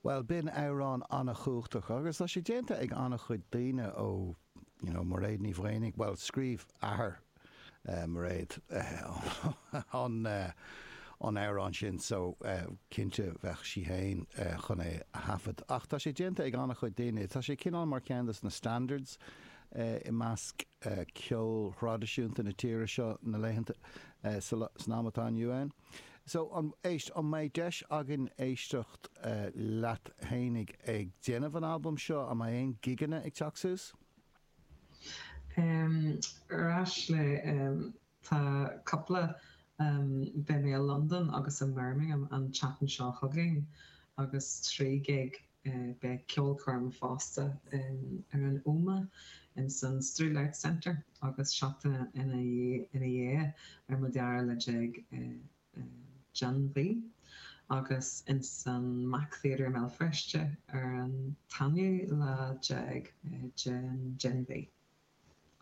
Bhuel, b'in amhrán an-chumhachtach agus tá sé déanta ag an-chuid daoine ó, you know, Mairéad Ní Mhaonaigh, bhuel, scríobh athair Mhairéad an amhrán sin so cinnte bheadh sí fhéin chun é a thaifead ach tá sé déanta ag an-chuid daoine, tá sé cineál mar cheann des na standards i measc ceol thraidisiúnta na tíre seo na laethanta, san am atá inniu ann. So, an, éist, an mbeidh deis againn éisteacht leat fhéinig ag déanamh an albaim seo? An mbeidh aon gigeanna ag teacht suas? Arís eile, tá cupla, beidh mé i Londain agus i mBirmingham an tseachtain seo chugainn agus trí ghig Beidh ceolchoirm fosta ar an Ómaigh ins an Strule Arts Centre agus seachtain ina dhiaidh ar an dara lá déag den mhí agus ins an MAC Theatre i mBéal Feirste ar an t-aonú lá déag den mhí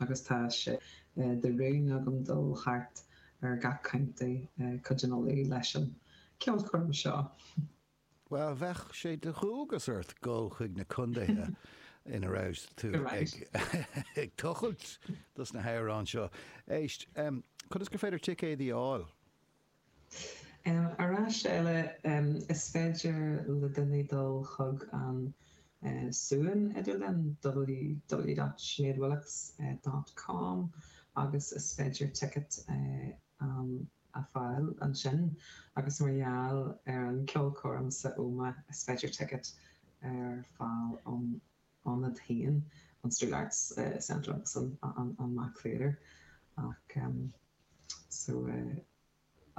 agus tá sé de rún agam dul thart ar gach county cuid an Uladh leis an cheolchoirm seo. Bhuel, bheadh sé de dhualgas ort dul chuig na condaetha ina raibh tú ag tochailt dos na hamhráin seo. Éist, conas gur féidir ticéidí a fháil? Arís eile, is féidir le daoine dul chuig an suíomh idirlín, www.sineadwillox.com, agus is féidir ticket a. a fháil ansin agus mar gheall ar an cheolchoirm san Ómaigh is féidir ticket a fháil ón ionad féin, an Strule Arts Centre agus an MAC Theatre ach so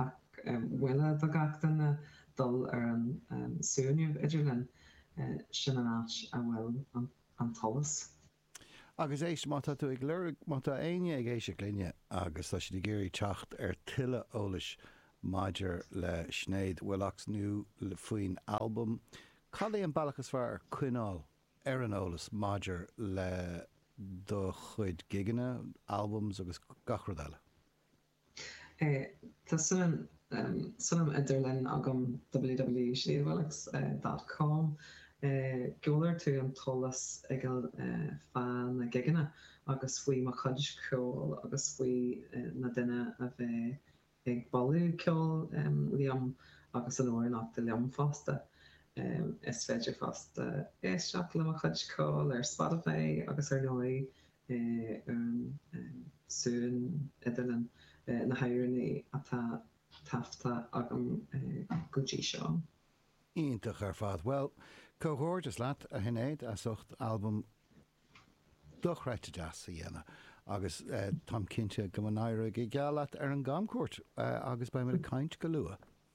ach mholfainn do gach duine dul ar an suíomh idirlín, sin an áit a bhfuil an t-eolas. Agus éist, má tá tú ag lorg, má tá éinne ag éisteacht linne agus tá siad ag iarraidh teacht ar tuilleadh eolais maidir le Sinéad Willox nó faoin albam, cad é an bealach is fearr coinneáil ar an eolas maidir le do chuid gigeanna, albums agus gach rud eile? Tá suíomh, suíomh idirlín agam, www.sineadwillox.com. Gheobhaidh tú an t-eolas uilig fá na gigeanna agus faoi mo chuid ceoil agus faoi na daoine a bheidh ag bualadh ceoil liom agus ag amhránaíocht liom fosta. Is féidir fosta éisteacht le mo chuid ceoil ar Spotify agus ar ndóigh Éireann, suantraí leis na hÉireannaigh atá taifeadta agam go dtí seo. Iontach ar fad. Bhuel, comhghairdeas leat, a Shinéad, as ucht albam dochreidte deas a dhéanamh agus táim cinnte go n-éireoidh go geal leat ar an gcamchuairt agus beimid ag caint go luath.